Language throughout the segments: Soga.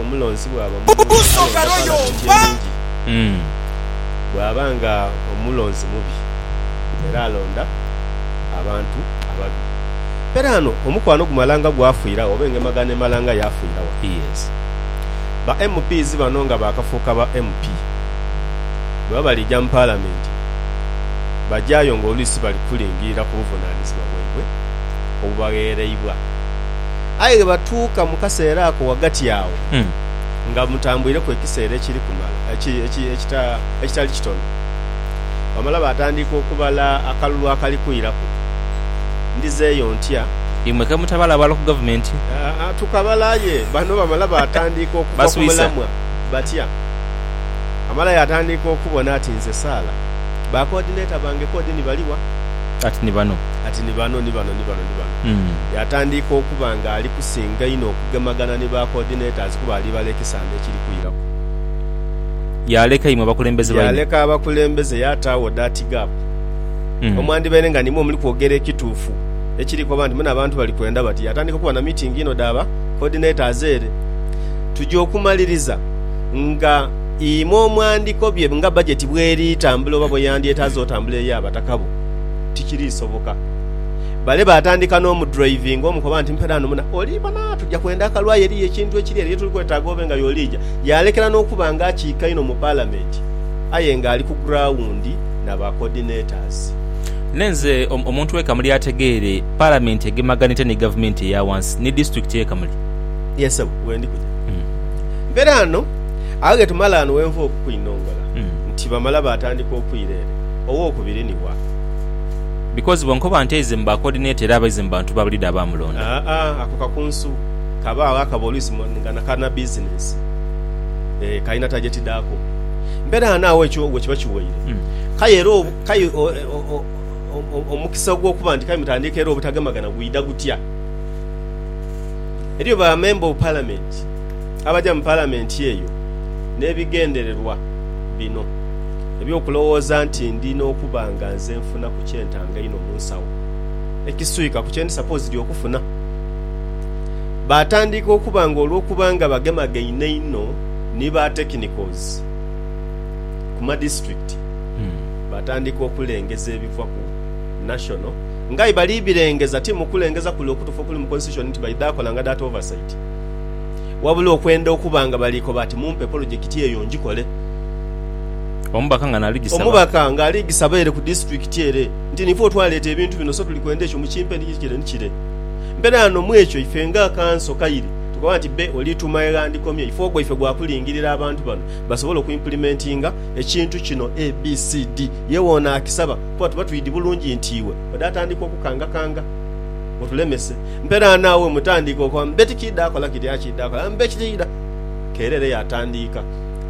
Omulonzi bwaba mulungi alonda Palamenti enungi, bwaba nga omulonzi mubi era alonda abantu ababi. Mberaano omukwano gumala nga gwafiiragho oba engemagana emala nga yafiiragho. Yes. Ba MPs bano nga baakafuuka ba MP, bwebaba baliija mu Palamenti bajayo ng'oluisi bali kulingiirira ku buvunaanizibwa bwaibwe obubagheereibwa. Aye bwe batuuka mu kaseera ako ghagati agho, nga mutambuireku ekiseera ekiri kumala ekitali kitono, bamala baatandika okubala akalulu akali kwiraku. Ndizeeyo ntya? Imwe ke mutabalabala ku gavumenti? Aa, tukabala aye bano bamala baatandika okuva ku mulamwa batya. Amala yaatandika okubona ati nze saala. Ba koodineta bange koodi ni bali wa? Ati ni bano. ati ni bano, ni bano, ni bano, ni bano. Yaatandiika okuba nga ali kusinga inho okugemagana ni ba coordinators kuba ali bala ekisanda ekiri kwiraku. Yaaleka imwe abakulembeze baine. Yaaleka abakulembeze yaataagho that gap omwandibaire nga nimwo omuli kwogera ekituufu ekiri koba nti mune abantu bali kwenda bati. Yaatandiika okuba na meeting inho dha ba coordinators ere. Tuja okumaliriza nga imwe omwandikobye nga budget bweri tambula oba bweyandyetaaze otambula eri abataka bo. tikirisoboka. Bale baatandika n'omudurayivinga omu koba nti, Mpeera ghano muna, oli bona tuja kwenda akalu aye eriyo ekintu ekiri ere ye tuli kwetaaga obe nga y'oliija. Yaalekera n'okuba nga akiika inho mu Palamenti aye ng'ali ku gurawundi na ba coordinators. Ne nze omuntu w'e Kamuli ategeere, Palamenti egemaganite ni Gavumenti eya wansi ni Disitulikiti y'e Kamuli. Ye ssebo, wendi kuja. Mpeera ghano, agho ge tumala ghano we nva okukwinongola nti bamala baatandika okwira ere. Owokubiri ni wa? Because bo nkoba nti aize mu ba coordinator era abaize mu bantu ba buliida abaamulonda. Aa, ako kakunsu kaba agho akaba oluisi nga na ka na business. Ee, kalina target dhaako. Mberaano agho ekyo we kiba kiweire. Kale era obu, kale o, o, o, o, omukisa ogw'okuba nti kale mutandiikeerewo obutagemagana gwidha gutya? Eriyo ba member of parliament. abaja mu Palamenti eyo n'ebigendererwa bino eby'okulowooza nti ndi n'okuba nga nze nfunaku kye ntanga einho mu nsawo ekiswika ku kye ndi sapoozidi okufuna. Baatandiika okuba nga olw'okuba nga bagemagaine inho ni ba tekinikozi ku madisiturikiti, baatandiika okulengeza ebiva ku nashono nga aye bali birengeza ti mu kulengeza kule okutuufu okuli mu Konsitityushoni nti baidha kola nga data ovasaiti. wabula okwenda okuba nga bali koba ati mumpe polojekiti eyo ngikole. Omubaka ng'ali gisaba ere ku disitulikiti ere nti niife otwaleeta ebintu bino so tuli kwenda ekyo mukimpe ni kire ni kire. Mberaano mu ekyo ife nga kanso kaire tukoba nti bbe oli tuma eghandikomye ife ogwaife gwa kulingirira abantu bano basobole okwimpulimentinga ekintu kino abcd. Ye woonaakisaba kuba tuba twidi bulungi nti iwe ode atandika okukangakanga otulemese. Mpeera naagho mutandiike okwamba beti kiidha kola kiri akiidha kola mbe kiriidha. Keire ere yaatandiika.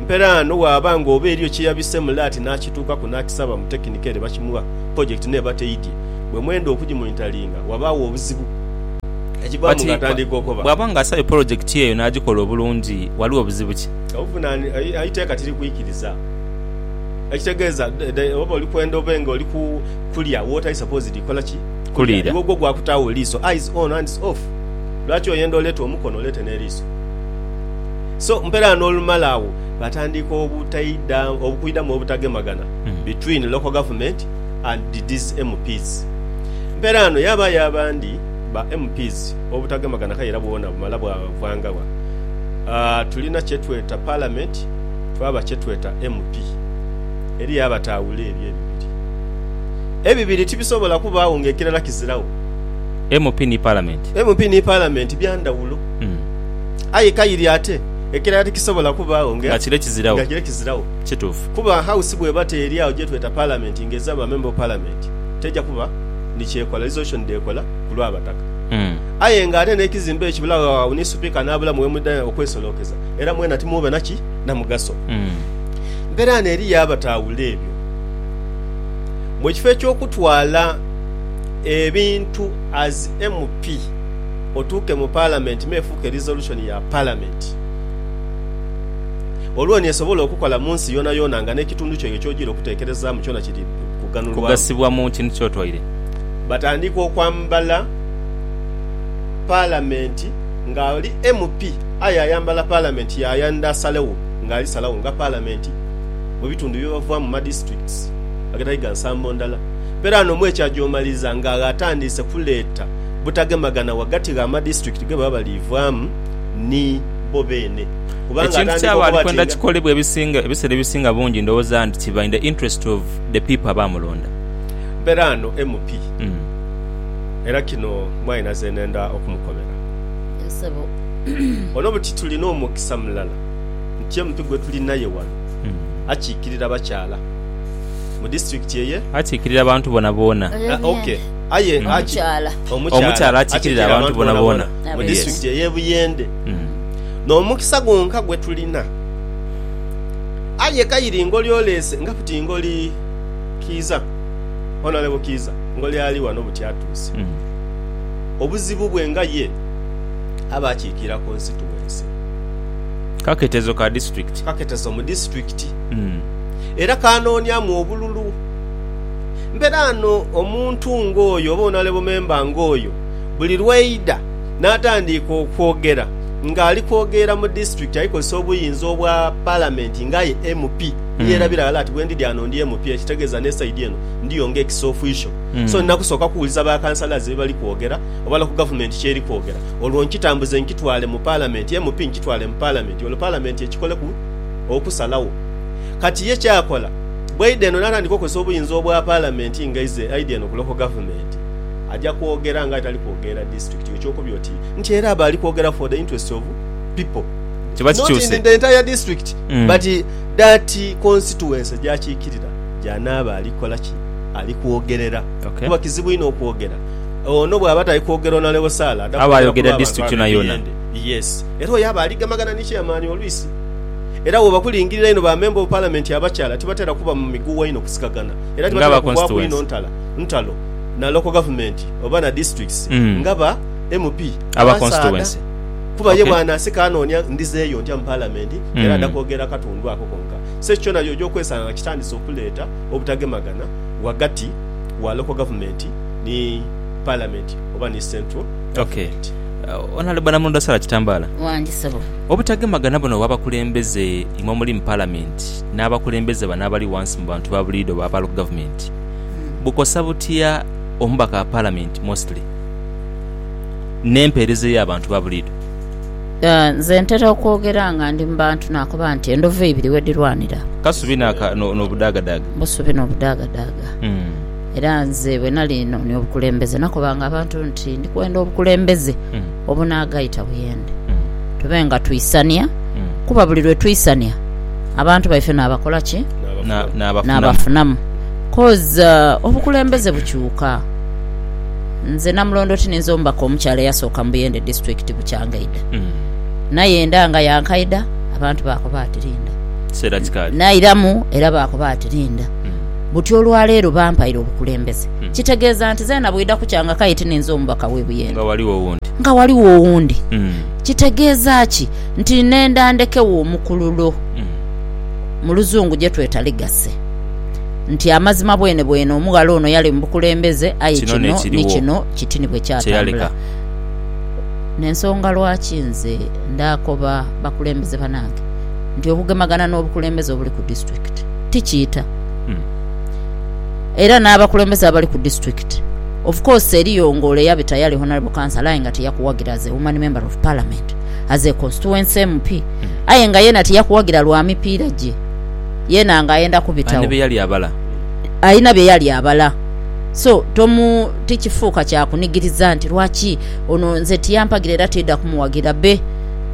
Mpeera no bwaba nga oba eriyo kye yabise mule ati naakituukaku naakisaba mu tekinika ere bakimugha, pulojekiti neeba teidhye. Bwe mwenda okugimonitaringa, wabaagho obuzibu ekivaamu Kati ng'atandiika okoba. bwaba nga asabye pulojekiti eyo naagikola obulungi, ghaligho buzibu ki? Obuvunani, Eiteeka tiri kwikiriza. Ekitegeeza, oba oli kwenda obe nga oli ku kulya w'otali supposedly kola ki? Kulira. Iwe ogwo gwakutaagho liiso, eyes on, hands off. Lwaki oyenda oleete omukono oleete n'eliiso? So, mperaano olumala agho batandiika obutaidha, obukwidhamu obutagemagana between local government and these MPs. Mperaano yabaayo abandi ba MPs obutagemagana kale era bwona bumala bwavaanga wa? Aah, tulina kyetweta parliament twaba kyetweta MP. Eliyo abataawula ebyo ebibiri. Ebibiri tibisobola kubaagho nga ekirala kiziragho. MP ni Palamenti. MP ni Palamenti bya ndhawulo. Aye kaire ate ekirala tikisobola kubaagho nga. Nga kire kiziragho. Nga kire kiziragho. Kituufu. Kuba House bw'eba teeri agho gye tweta Palamenti nga ezira ba Member of Parliament, teija kuba ni ky'ekola, resolution dh'ekola ku lw'Abataka. Aye nga ate n'ekizimbe ekyo bulagho agho ni Supika n'abulamu we mwidha okwesolookeza, era mwena timwoba na ki? Na mugaso. Mperaano eriyo abataawula ebyo. mu kifo eky'okutwala ebintu as MP otuuke mu Palamenti me efuuke resolution ya Palamenti olwo ni esobola okukola mu nsi yoonayoona nga n'ekitundu kyaibwe ky'ojiire okuteekerezaamu kyona kiri kughanulwamu. Batandiika okwambala Palamenti ng'ali MP aye ayambala Palamenti yaaya nd'asalegho ng'ali salagho nga Palamenti. mu bitundu bye bavaamu mu ma districts agatali ga nsambo ndala. Mberaano mwekyo agyomaliriza nga atandiise kuleeta butagemagana ghagati gha ma district ge baba bali vaamu ni bo beene kubanga Ekintu atandika kyaba ali okuba ati kwenda nga. kikolebwe ebisinga ebisera ebisinga bungi ndhowooza nti kiba in the interest of the people abaamulonda. Mberaano MP era kino mwine nhaze nenda okumukobera. Yes sebo. Ono buti tulina omukisa mulala. nti ye muntu gwe tuli naye wano akiikirira bakyala mu disiturikiti eye. Akiikirira abantu boonaboona. Ok. Aye omukyala akiikirira abantu boonaboona mu disiturikiti ey'e Buyende. N'omukisa gwonka gwe tulina. Aye Kairi ngoli oleese nga buti ngoli Kiiza, Honourable Kiiza, ngoli ali wano buti atuuse. Obuzibu bwe nga ye aba akiikirira konsituwense. Kaketezo ka disitulikiti. Kaketezo mu disitulikiti. Era kaanooniamu obululu. Mberaano omuntu ng'oyo oba onalebo memba ng'oyo buli lw'aidha n'atandiika okwogera ng'ali kwogeera mu disitulikiti ali kozesa obuyinza obwa Palamenti ng'aye MP. Yeerabira ghala ati bwendidhi ghano ndi MP ekitegeeza n'esaidi eno ndiyo ng'ekisoofiisho. So nina kusooka kuwuliza ba Councillors bye bali kwogera obala ku Gavumenti ky'eri kwogera. olwo nkitambuze nkitwale mu Palamenti, MP nkitwale mu Palamenti olwo Palamenti ekikoleku okusalagho. Kati ye kyakola bwaidha eno natandika okozesa obuyinza obwa Palamenti nga ize aidha eno ku Local Government aja kwogera nga aye tali kwogerera District yo kyokubye oti nti era aba ali kwogera for the interests of people not in the entire District but that Constituency gyakikirira gyanaaba ali kola ki? Ali kwogerera kuba kizibu inho okwogera. Ono bw'aba tali kwogera ono alewosala ada Aba kwogera ku ayogera lw'abantu district abe yonayona. biyende. Yes. Era oyo aba ali gamagana ni chairman olwisi. Era bwoba kulingirira inho ba member of parliament abakyala tibatera kuba mu migugha inho kusikagana era Nga aba tibatera kugwaku constituency. inho ntala ntalo na local government oba na districts Mm. nga ba MP Aba abasaadha constituency. kuba ye Okay. bw'anasika anoonia ndhizeeyo ntya mu parliament Mm. era ada kwogera katundu ako konka. So ekyo kyona y'oja okwesanga nga kitandise okuleeta obutagemagana ghagati wa local government ni Parliament oba ni Central Government. Okay. Honourable Namulondo Sarah Kitambala. Wangi ssebo. Obutagemagana buno obw'abakulembeze imwe omuli mu Parliament n'abakulembeze bano abali wansi mu bantu ba buliidho ba Local Government bukosa butya omubaka wa Parliament mostly n'empeereza ey'abantu ba buliidho? Nze ntera okwogera nga ndi mu bantu nakoba nti endhovu ibiri wedhirwanira. Kasubi n'obudaagadaaga. Busubi n'obudaagadaaga. Era nze bwe nali noonia obukulembeze, nakobanga abantu nti ndi kwenda obukulembeze Mm. obunaagaita buyende. Mm. Tube nga twisania, Mm. kuba buli lwe twisania abantu baife naabakola ki? Na- n'abafunamu. Naabafunamu. Coz uh, obukulembeze bukyuka. Nze Namulondo ti ninze omubaka omukyala eyasooka mu Buyende disitulikiti bukyangaida. Mm. Naye enda nga yankaida, abantu baakoba ati linda. Kiseera kikaali. Nairamu era baakoba ati linda. Buti olwa leero bampaire obukulembeze. Kitegeeza nti zeena bwidha kukya nga k'aye tininze omubaka w'e Buyende. Nga ghaligho owundi. Kitegeeza ki? Nti nenda ndhekegho omukululo, mu luzungu gye tweta legacy. Nti amazima bwene bwene omughala ono yali mu bukulembeze aye kino ni kino kiti ni bwe kyatambula. N'ensonga lwaki nze ndaakoba bakulembeze banange nti obugemagana n'obukulembeze obuli ku disitulikiti, ti kiita. Era n'abakulembeze abali ku disitulikiti, of course eriyo nga ole yabita yali honourable councillor aye nga tiyakuwagira as a woman member of parliament, as a constituency MP, aye nga yeena tiyakuwagira lwa mipiira gye yeena nga ayenda kubitawo. Alina bye yali abala. Alina bye yali abala. So tomu, tikifuuka kya kunigiriza nti lwaki ono nze tiyampagira era tiidha kumuwagira. Be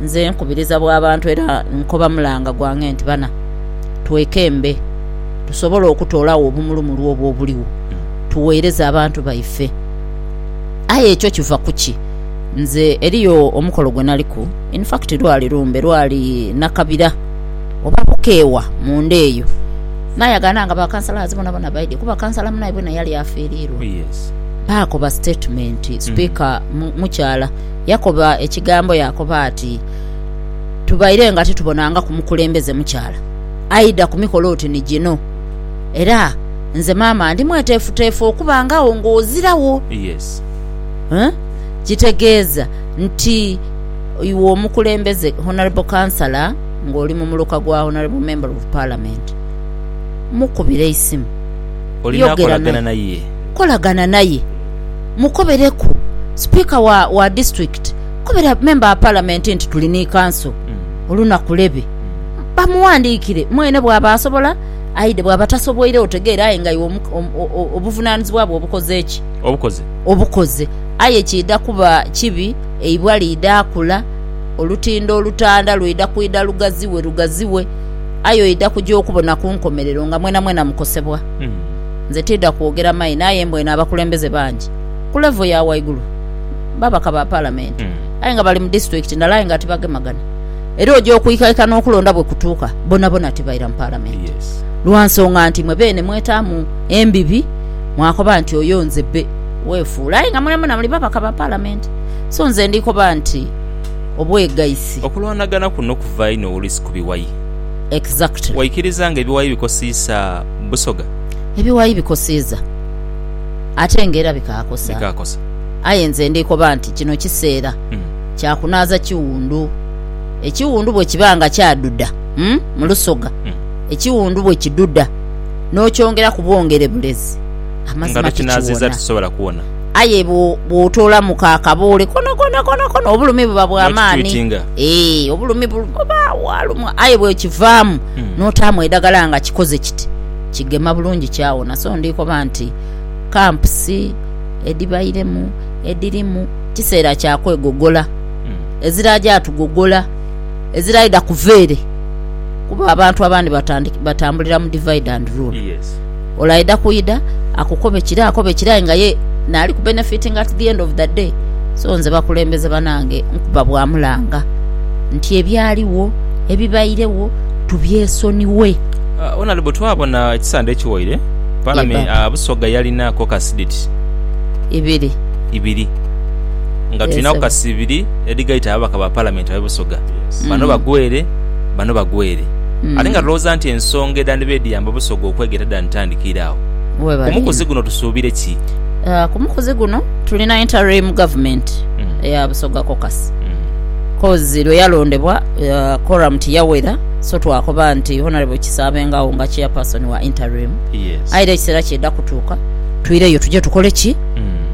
nze nkubiriza bwa bantu era nkoba mulanga gwange nti bana, twekembe tusobole okutoolagho obumulumulu obwo obuligho tugheereze abantu baife. Aye ekyo kiva ku ki? Nze eriyo omukolo gwe naliku, in fact lwali lumbe, lwali nakabira oba bukeewa munda eyo. Naayagaana nga bakansalaazi bonabona baidhie kuba kansala munaibwe naye yali afiiriirwa. Baakoba sitetimenti, sipiika mukyala yakoba ekigambo yaakoba ati, tubaire nga titubonangaku mukulembeze mukyala aidha ku mikolo oti ni gino. Era nze maama ndi mweteefuteefu okubangagho ng'oziragho. Kitegeeza nti iwe omukulembeze, Honourable Councillor, ng'oli mu muluka gwa Honourable Member of Parliament, mukubire eisimu, yogera naye, kolagana naye, mukobereku. Sipiika wa district. kobera memba wa Palamenti nti tuli ni kanso olunaku lebe bamughandiikire mwene bwaba asobola aidhe bwaba tasobwoire otegeere aye nga iwe obuvunanizibwa bwo obukoze ki? Obukoze. Aye kiidha kuba kibi eibwa liidha kula, olutindo olutanda lwidha kwidha lugaziwe lugaziwe aye oidha kuja okubona ku nkomerero nga mwenamwena mukosebwa. Nze tiidha kwogera maini aye mbweine abakulembeze bangi ku levo ya waigulu. babaka ba palamenti mm. aye nga bali mu disitulikiti ndala aye nga tibagemagana era oja okwikaika n'okulonda bwe kutuuka bonabona tibaira mu palamenti yes. lwa nsonga nti mwe beene mwetaamu embibi mwakoba nti oyo nze be weefuula aye nga mwenamwena muli babaka ba palamenti so nze ndikoba nti obwegaisi okulwanagana kuno kuva ino oluisi ku biwayi exactly waikiriza nga ebiwayi bikosiisa busoga ebiwayi bikosiiza ate nga era bikaakosa bikaakosa Aye nze ndikoba nti kino kiseera kya kunaaza kiwundu. Ekiwundu bwe kiba nga kyadudha mu lusoga, ekiwundu bwe kidudha n'okyongeraku bwongere bulezi, amazima tikiwona. Aye bw'otoolamu ku akaboole konakona, konakona, obulumi buba bwa maani. Ee, obulumi buba bwalumwa. Aye bw'okivaamu n'otaamu edhagala nga kikoze kiti, kigema bulungi kyawona. So ndikoba nti kampusi. edhibairemu edhiri mu kiseera kya kwegogola, eziraja tugogola, eziraidha kuva ere kuba abantu abandi batambulira mu divide and rule. Olaidha kwidha akukobe kire akobe kire aye nga ye naali ku benefitinga at the end of the day. So nze bakulembeze banange nkuba bwa mulanga nti ebyaligho, ebibairegho tubyesoniwe. Honourable twabona ekisande ekiwaire. Ye Paalame- baba. ah, Busoga yalina kokasi dhiti Ibiri. ibiri nga Yes, tulina sebo. kokasi ibiri edhigaita ababaka ba paalamenti abe Busoga. Bano Mm. bagwere, bano bagwere. Mm. Ate nga tulowooza nti ensonga edhandiba edhiyamba Busoga okwegeta dhanditandikira agho. Ku Webale. mukuzi guno tusuubire ki? Ah, ku mukuzi guno tulina interim government Mm. eya Busoga caucus Mm. cause lwe yalondebwa ah, quorum tiyawera So twakoba nti Honourable kisaabengagho nga Chairperson wa interim aye era ekiseera kyeda kutuuka twireyo tuje tukole ki?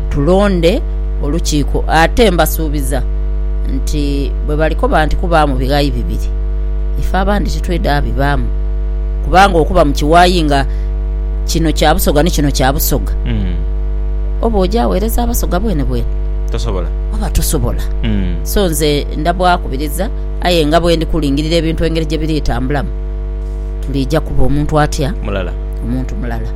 Tulonde olukiiko ate mbasuubiza nti bwe balikoba nti kubaamu bighayi bibiri ife abandi titweda bibaamu kubanga okuba mu kiwayi nga kino kya Busoga ni kino kya Busoga oba oja aweereza Abasoga bwenebwene oba tosobola. So nze ndabwakubiriza. Aye nga bwendi kulingirira ebintu engeri gye biritambulamu, tuliija kuba omuntu atya? Mulala. Omuntu mulala.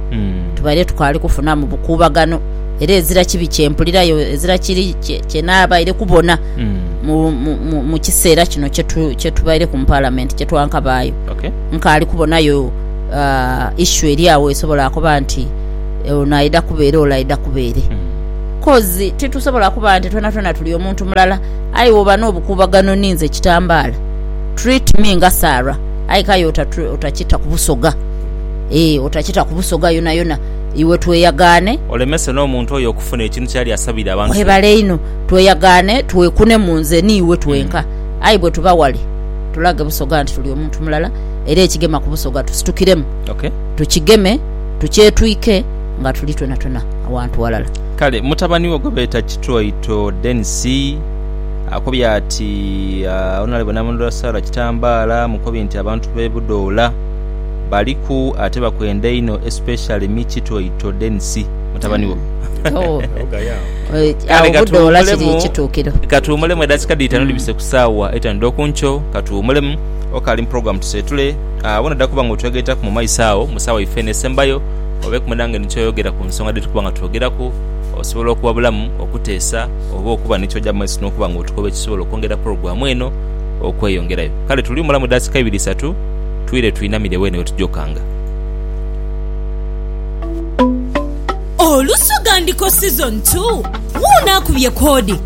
Tubaire tukaali kufunamu bukuubagano, era ezira kibi kye mpulirayo, ezira kiri kye naabaire kubona mu kiseera kino kye tubaireku mu Palamenti, kye twankabaayo. Nkaali kubonayo issue eri agho esobola akoba nti ono aidha kuba ere, ole aidha kuba ere. Kozi titusobola kuba nti twonatwona tuli omuntu mulala. Aye woba n'obukuubagano ni nze Kitambaala, treat me nga Sarah. Aye k'aye otakita ku Busoga, eeh, otakita ku Busoga yonayona, iwe tweyagaane. Olemese n'omuntu oyo okufuna ekintu ky'ali asabire abantu be. Mwebale inho. Tweyagaane twekunemu nze ni iwe twenka. Aye bwe tuba wale, tulage Busoga nti tuli omuntu mulala, era ekigema ku Busoga tusitukiremu, tukigeme, tukyetwike nga tuli twonatwona awantu walala. Kale mutabani wo gwe beeta Kitwaito Denis akobye ati Onalebo Namunula Sarah Kitambaala mukobye nti abantu b'e Budoola baliku ate bakwenda inho especially me Kitwaito Denis mutabani wo. Kale katuwumulemu edakika dh'eitaanu dhibise ku saawa eitaanu edh'oku nkyo, katuwumulemu okaali mu program tuseetule awo nodha kuba nga otwegaitaku mu maiso agho mu saawa yaife eno esembayo. obe kumwe nange ni kyoyogera ku nsonga dhetukuba nga twogeraku. Osobola okuwabulamu, okuteesa, oba okuba ni kyoja mu maiso n'okuba nga otukoba ekisobola okwongera pulogulaamu eno okweyongerayo. Kale tuli mulamu daakika ibiri isatu, twire twinamire weene we tuja okanga. Olusoga Ndiko Season Two, Wuuno akubye koodi.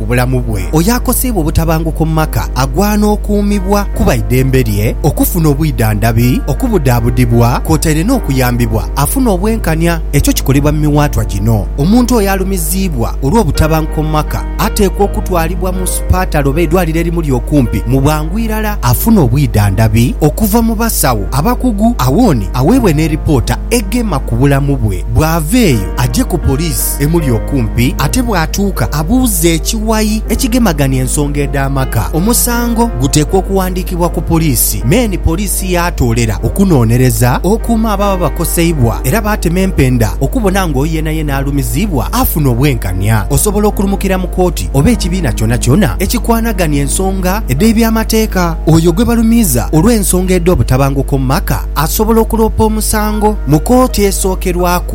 ku bulamu bwe. Oyo akoseibwa obutabanguko mu maka agwana okuumibwa kuba idembe lye okufuna obwidhandhabi, okubudaabudibwa kwotaire n'okuyambibwa afune obwenkanya. Ekyo kikolebwa mu miwaatwa gino. Omuntu oyo alumiziibwa olw'obutabanguko mu maka ateekwa okutwalibwa mu supatale oba eidwaliro erimuli okumpi mu bwangu irala afune obwidhandhabi okuva mu basawo abakugu awoni aweebwe n'eripoota egema ku bulamu bwe. Bw'ava eyo aje ku poliisi. emuli okumpi ate bw'atuuka abuuze ekiwayi ekigemagania ensonga edh'amaka. Omusango guteekwa okuwandiikibwa ku poliisi me ni poliisi yaatoolera okunoonereza okuuma ababa bakoseibwa era baatema empenda okubona nga oyo yenayena alumiziibwa afuna obwenkania. Osobola okulumukira mu kooti oba ekibiina kyonakyona ekikwanagania ensonga edh'ebyamateeka. Oyo gwe balumiiza olw'ensonga edh'obutabanguko mu maka asobola okuloopa omusango mu kooti esookerwaku.